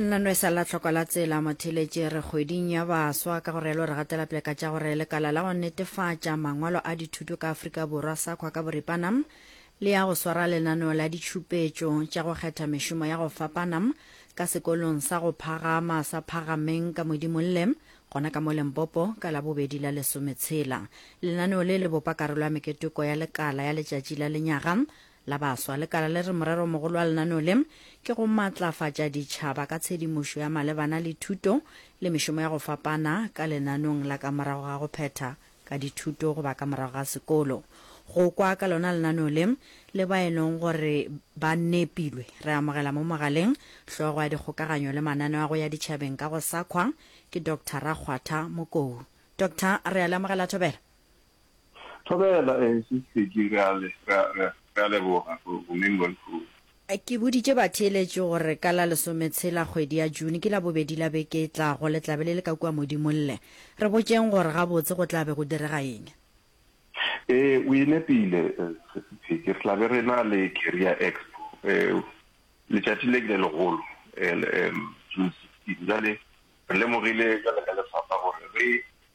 nna no e sa la tlhoko la tsela motheletše re kgweding ya baswa ka gore lo re gatela pele ka tša gore lekala la go netefatša mangwalo a dithuto ka afrika borwa sa kgwa ka boripana le ya go swara lenaneo la ditšhupetšo tša go kgetha mešomo ya go fapana ka sekolong sa go phagama sa phagameng ka modimolle gona ka mo lempopo ka labobedi la lesometshela lenaneo le le bopa karolo ya meketoko ya lekala ya letšatši la lenyaga La Baswa, lekala le re moreromogolo wa lenaneo le ke go matlafatša ditšhaba ka tshedimošo ya malebana le thuto le mešomo ya go fapana ka lenaneong la ka morago ga go phetha ka dithuto goba ka morago ga sekolo. Go kwa ka lona lenaneo le le ba e leng gore ba nepilwe re amogela mo mogaleng hlogo ya dikgokaganyo le mananeo a go ya ditšhabeng ka go sakhwa ke Doctor Rakgwatha Mokou. Doctor, re a le amogela thobela. Thobela, ee, se se tledi, re a le, re a, re a, re a leboga, go, go meng bo lehono. Ke boditše batheeletši gore ka la lesometshela kgwedi ya June, ke Labobedi la beke e tlago, le tla be le le ka kua Modimo lle. Re botšeng gore gabotse go tla be go direga eng. Ee, o e nepile, Sesi Peggy. Re tla be re na le Career Expo, letšatši le le legolo, June 16. Bjale re lemogile bjale ka lefapha gore re,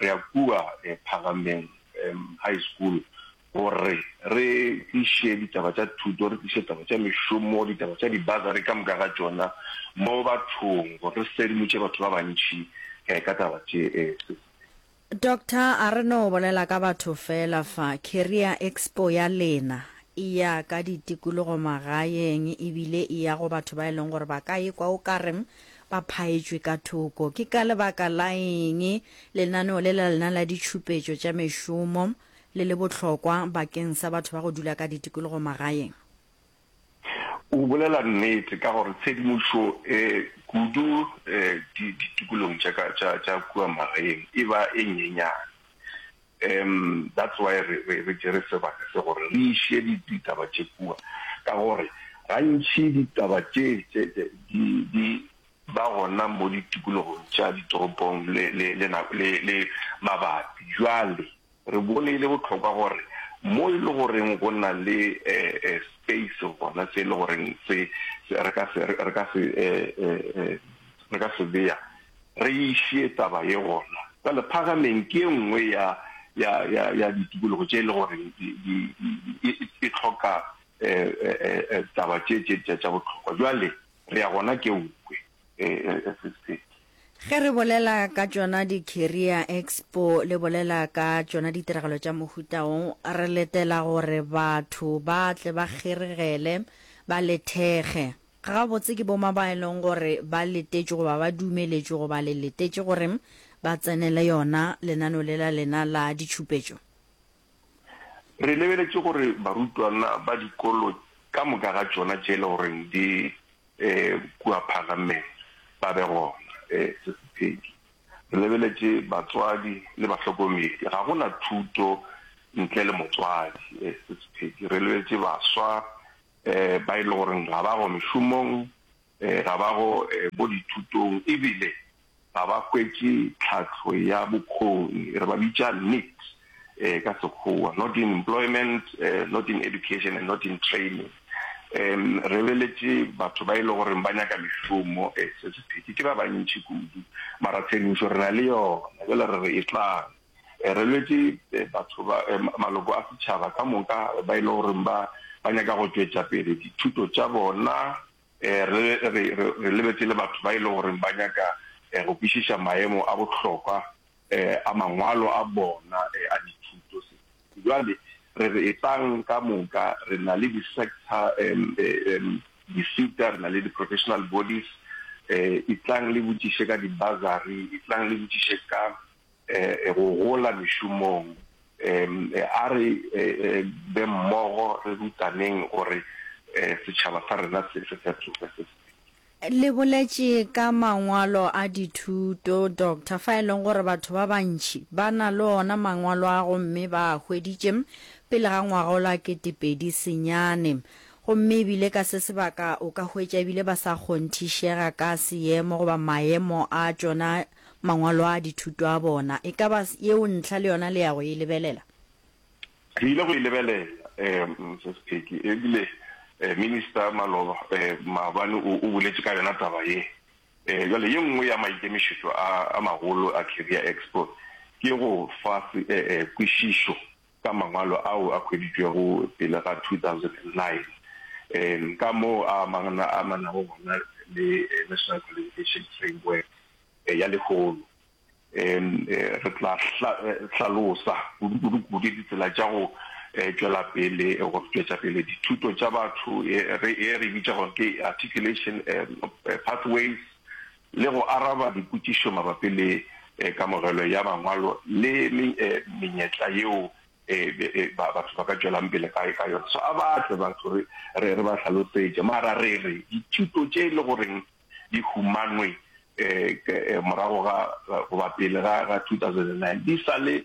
Re ya kua Phagameng High School gore re tliše ditaba tša thuto, re tliše ditaba tša mešomo, ditaba tša di-bursary ka moka ga tšona mo bathong gore re sedimotše batho ba bantši ka taba tše. Doctor, a re no bolela ka batho fela fa. Career Expo ya lena e ya ka ditikologo magaeng ebile e ya go batho ba e leng gore ba ka ekwa o ka re ba phaetšwe ka thoko. Ke ka lebaka la eng lenaneo le la lena la ditšhupetšo tša mešomo le le bohlokwa bakeng sa batho ba go dula ka ditikologo magaeng? O bolela nnete ka gore tshedimošo kudu ditikologong tša kua magaeng e ba e nyenyane. Umm that's why re re re tšere sebaka se gore re iše di ditaba tše kua ka gore gantši ditaba tše tše tše di di ba gona mo ditikologong tša ditoropong le le le nako le le mabapi. Jwale re bone e le bohlokwa gore mo e le goreng go na le eh eh space gona se e le goreng se re ka se re ka se eh eh re ka se bea Re išie taba ye gona. Bjale, Phagameng ke e nngwe ya, ya, ya, ya ditikologo tše e le gore di, di, di, di, e, e hloka e, e, e, e, taba tše, tše, tše tša bohlokwa. Bjale, re ya gona ke o kwe, e, e, e, se, se. Ge re bolela ka tšona di-career expo, le bolela ka tšona ditiragalo tša mohuta wo, re letela gore batho ba tle ba kgeregele, ba lethege. Gabotse ke bomang ba e leng gore ba letetšwe goba ba dumeletšwe goba le letetše gore ba tsenele yona lenaneo le la lena la ditšhupetšo? Re lebeletše gore barutwana ba dikolo ka moka ga tšona tše e le gore di kua Phalameng ba be gona. Se se pedi, re lebeletše batswadi le bahlokomedi. Ga go na thuto ntle le motswadi. Se se pedi, re lebeletše baswa ba e le goreng ga ba go mešomong, ga ba go bo dithutong e bile ga ba hwetše tlhahlo ya bokgoni, re ba bitša nits ka Sekgowa, not in employment, not in education and not in training. Re leletše batho ba e le goreng ba nyaka mešomo, se sephethí, ke ba bantši kudu, mara tshedimošo re na le yona, bjale re re etlang. Re lwetše batho ba, maloko a setšhaba ka moka ba e le goreng ba, ba nyaka go tšwetša pele dithuto tša bona. Re, re, re, re lebetše le batho ba e le goreng ba nyaka go kwešiša maemo a bohlokwa a mangwalo a bona a dithuto. Bjale re re etlang ka moka, re na le di-sector, disita, re na le di-professional bodies, etlang le botšiše ka di-bursary, etlang le botšiše ka e go gola mešomong. E a re be mmogo re rutaneng gore setšhaba sa rena se fetoge se se. Le boletše ka mangwalo a dithuto, Doctor, fa e leng gore batho ba bantši ba na le ona mangwalo a gomme ba a hweditše pele ga ngwagolo a ketepedi senyane. Gomme ebile ka se sebaka o ka hwetša ebile ba sa kgonthišega ka seemo goba maemo a tšona. Mangwalo a dithuto a bona. E ka ba yeo ntlha le yona le ya go e lebelela? Re ile go e lebelela, Mrs. Peggy, e bile Minister Maloba maabane o boletše ka yona taba ye. Bjale, ye nngwe ya maikemišetšo a magolo a Career Expo ke go fa kwešišo, ka mangwalo ao a hweditšwego pele ga 2009 ka moo a amanago gona le National Qualification Framework ya lehono. Re tla hlalosa kudu-kudu ditsela tša go tšwela pele go tšwetša pele dithuto tša batho ye re e bitšago ke Articulation Pathways le go araba dipotšišo mabapi le kamogelo ya Mangwalo le menyetla yeo batho ba ka tšwelang pele ka yona. So a ba tle batho re re re ba hlalosetše. Mara re re dithuto tše e le goreng di humanwe morago ga goba pele ga 2009 di sa le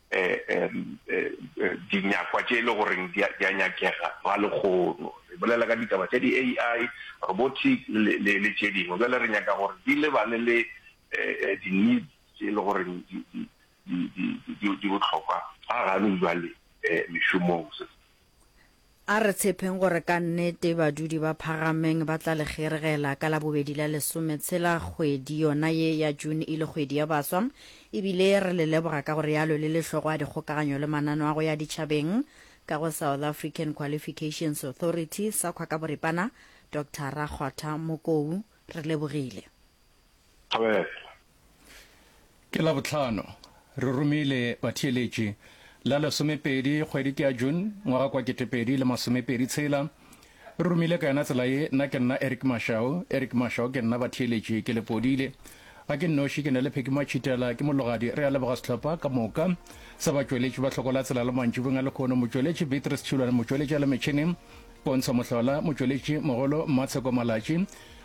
dinyakwa tše e le goreng di a nyakega ga lekgono. Re bolela ka ditaba tša di-AI, robotic le tše dingwe. Bjale re nyaka gore di lebane le di-needs tše e le goreng di bohlokwa ga gane bjale mešomong. A re tshepeng gore ka nnete badudi ba Phagameng ba tla le kgeregela ka Labobedi la lesome tshela. Kgwedi yona ye ya June e le kgwedi ya baswa e bile re le leboga ka go realo le le hlogo a dikgokaganyo le manano a go ya ditšhabeng ka go South African Qualifications Authority, SAQA ka boripana, Doctor Rakgotha Mokou. Re lebogile. Thobela. Ke Labohlano, re romile batheeletši, la lesomepedi kgwedi ke ya June, ngwaga kwa ketepedi le masomepedi tshela. Re romile ka yona tsela ye, nna ke nna Eric Mashau, Eric Mashau ke nna, batheeletši ke Lepodile. Ga ke nnoši, ke na le Phekiwa Tšhitela, ke mologadi, re a leboga sehlopha ka moka sa batšweletši ba Hloko la Tsela la Mantšibong a lekhono, motšweletši Beatrice Tšhilwane, motšweletši a le metšhineng Pontsho Mohlola, motšweletši mogolo Mmatsheko Malatši,